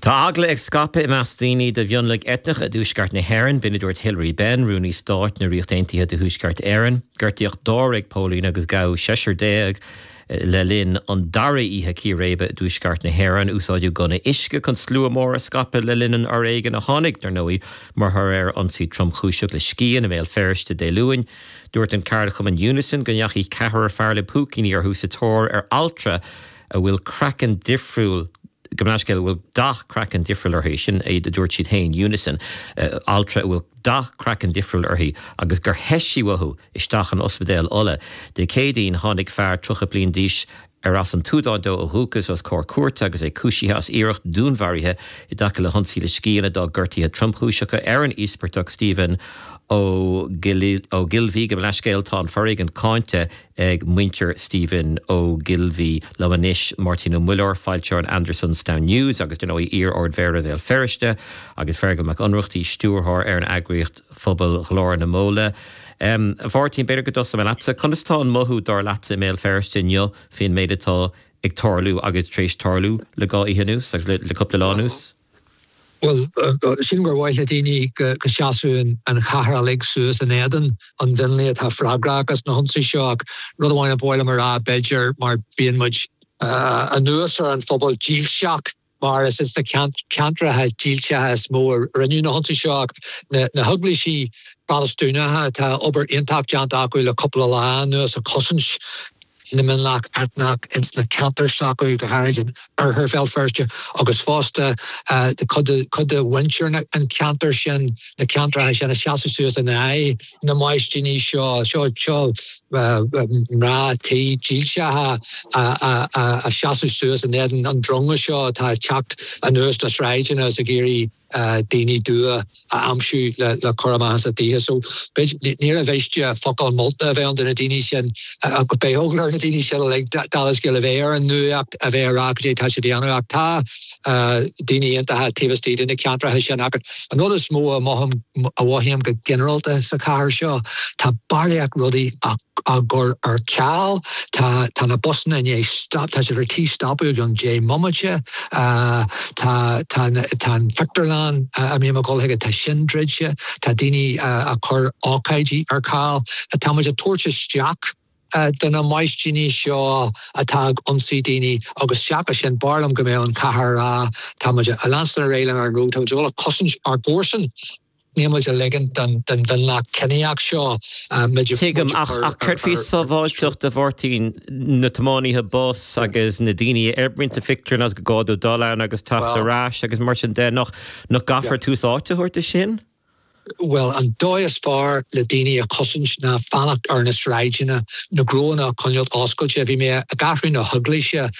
Tá eagla ag scaipeadh i measc daoine de mhionlaigh eitneacha i dTuaisceart na hÉireann. B'in a dúirt Hilary Benn, Rúnaí Stáit na Ríochta Aontaithe do Thuaisceart Éireann. Gortaíodh dáréag póilín agus gabhadh seisear déag le linn an dara oíche círéibe i dTuaisceart na hÉireann. Úsáideadh gunna uisce chun slua mór a scaipeadh le linn an fhoréigin a tháinig, dar ndóigh, mar thoradh ar ionsaí tromchúiseach le scian i mBéal Feirste Dé Luain. Dúirt an ceardchumann Unison go ndeachaigh ceathrar fear le púicíní orthu sa tóir ar altra, a bhfuil craiceann difriúil, gabh mo leithscéal a bhfuil dath craicinn difriúil uirthi, sin a dúirt siad féin, Unison, altra a bhfuil dath craicinn difriúil uirthi, agus gur theith sí uathu isteach in Ospidéal Uladh. Dé Céadaoin, tháinig fear 30 bliain d'aois, arb as an tSúdáin dó ó dhúchas, os comhair cúirte agus é cúisithe as iarracht dúnmharaithe i dtaca le hionsaí le scian a d'fhág gortuithe tromchúiseacha ar an íospartach, Stephen Ogilvie. Gabh mo leithscéal, tá an foréigean cáinte. ag muintir Stephen Ogilvie. Liom anois, Máirtín Ó Muilleoir, foilseoir an Andersonstown News agus, ar ndóigh, iar-Ardmhéara Bhéal Feirste, agus Feargal Mac Ionnrachtaigh, stiúrthóir ar an eagraíocht phobail Ghlór na Móna. A Mháirtín, b'fhéidir go dtosóidh mé leatsa. Conas atá an mothú, dar leatsa, i mBéal Feirste inniu faoin méid atá ag tarlú agus tar éis tarlú le dhá oíche anuas agus le cúpla lá anuas? Bhuel, sílim gur mhaith le daoine go seasfadh an chathair uilig suas in éadan an mhionlaigh atá freagrach as na hionsaithe seo ach rud amháin a ba mhaith liom a rá, b'fhéidir, mar bíonn muid anuas ar an phobal dílseach mar is sna ceantracha dílseacha is mó a rinneadh na hionsaithe seo ach na heaglaisí Protastúnacha, tá obair iontach déanta acu le cúpla lá anuas ag cosaint. na mionlach eitneach ins na ceantair seo go háirid in oirthear Bhéal Feirste agus fosta cuid de mhuintir an cheantair sin, na ceantracha sin ag seasamh suas in aghaidh na maistíní seo, seo mná tí dílseacha ag seasamh suas in éadan an dronga seo atá ag teacht anuas na sráideanna is ag iarraidh. daoine dubha a aimsiú le cur amach as a dtithe so níor mhiste focal molta a bheith ann do na daoine sin agus beidh eagla ar na daoine sin uilig dála scéil a bheith ar an nuaíocht a bheith ag rá cad é tá siad a dhéanamh ach tá daoine iontacha taobh istigh de na ceantracha sin ach an rud is mó a mothaím, a mhothaím go ginearálta sa chathair seo tá barraíocht rudaí a. á gcur ar ceal. Tá tá na busanna i ndiaidh stop tá siad ar tí stopadh i gcionn deich mbomaite. Tá tá tá tá an phictiúrlann a mbíodh mé ag dul chuige tá sin druidte. Tá daoine ag cur ócáidí ar ceal. Tá muid ag tabhairt isteach do na maistíní seo atá ag ionsaí daoine agus seachas sin b'fhearr liom go mbeadh an chathair ag rá tá muid ag leanstan ar aghaidh lenár ngnó tá muid ag dul a chosaint ár gcomharsan Níl muid ag ligint don mhionlach ciníoch seo muid a Tuigim, ach chur céard faoi ar sruth? sábháilteacht, a Mháirtín? Na tiománaithe bus agus na daoine a oibríonn sa phictiúrlann is gur gá dóibh dul ann agus teacht Bhuel. ar ais agus mar sin de? Nach gcaithfear tús áite a thabhairt do sin? Bhuel, an dóigh is fearr le daoine a chosaint ná fanacht ar na sráideanna, na gnónna a choinneáilt oscailte. Bhí mé i gCeathrú na hEaglaise.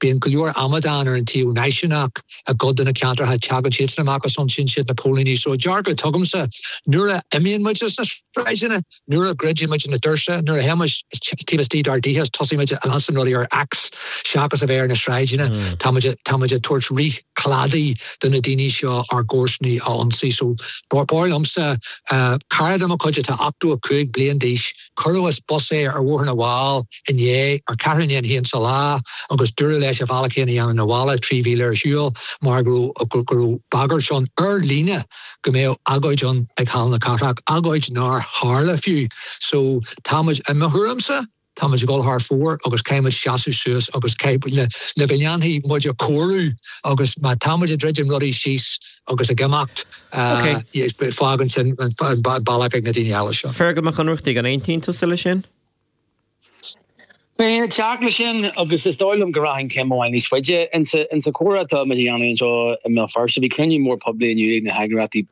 Bíonn go leor amadán ar an taobh náisiúnach i gcuid de na ceantracha. Teagann siadsan amach agus ionsaíonn siad na póilíní. So dearcadh atá agamsa, nuair a imíonn muid as na sráideanna, nuair a dhruidíonn muid na doirse, nuair a théann muid taobh istigh dár dtithe is tosaíonn muid a ionsaí rudaí ar X seachas a bheith ar na sráideanna, tá muid ag tabhairt rith cladaigh do na daoine seo ár gcomharsanaí a ionsaí. So b'fhearr liomsa cara de mo chuid atá 85 bliain d'aois, Cuireadh as bus é ar Bhóthar na bhFál inné, ar ceathrú i ndiaidh a haon sa lá, agus dúradh leis a bhealach féin a dhéanamh na bhaile, trí mhíle ar shiúl, mar go raibh bagairt ann, ar líne, go mbeadh agóid ann ag Halla na Cathrach, agóid nár tharla, fiú. So, táimid, i mo thuairimse, táimid ag dul thar fóir agus caithfimid seasamh suas agus caith, le go ndéanfaidh muide cóiriú agus má táimid ag druidim rudaí síos, agus ag imeacht. Ok. Fágann sin bealach ag na daoine eile seo. Feargal Mac Ionnrachtaigh, an aontaíonn tusa leis sin? Bheinn ag teacht leis sin agus is dóigh liom go rachainn céim amháin níos faide. Insa chomhrá atá muid a dhéanamh anseo i mBéal Feirste, bhí cruinniú mór poiblí inniu ag na heagraíochtaí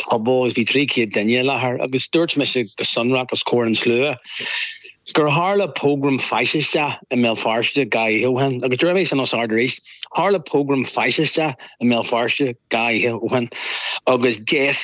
pobail agus bhí 300 duine i láthair agus dúirt mise go sonrach os comhair an tslua gur tharla pogram faisisteach i mBéal Feirste dhá oíche ó shin agus déarfaidh mé sin os ard arís Tharla pogram faisisteach i mBéal Feirste dhá oíche ó shin agus d'éascaigh.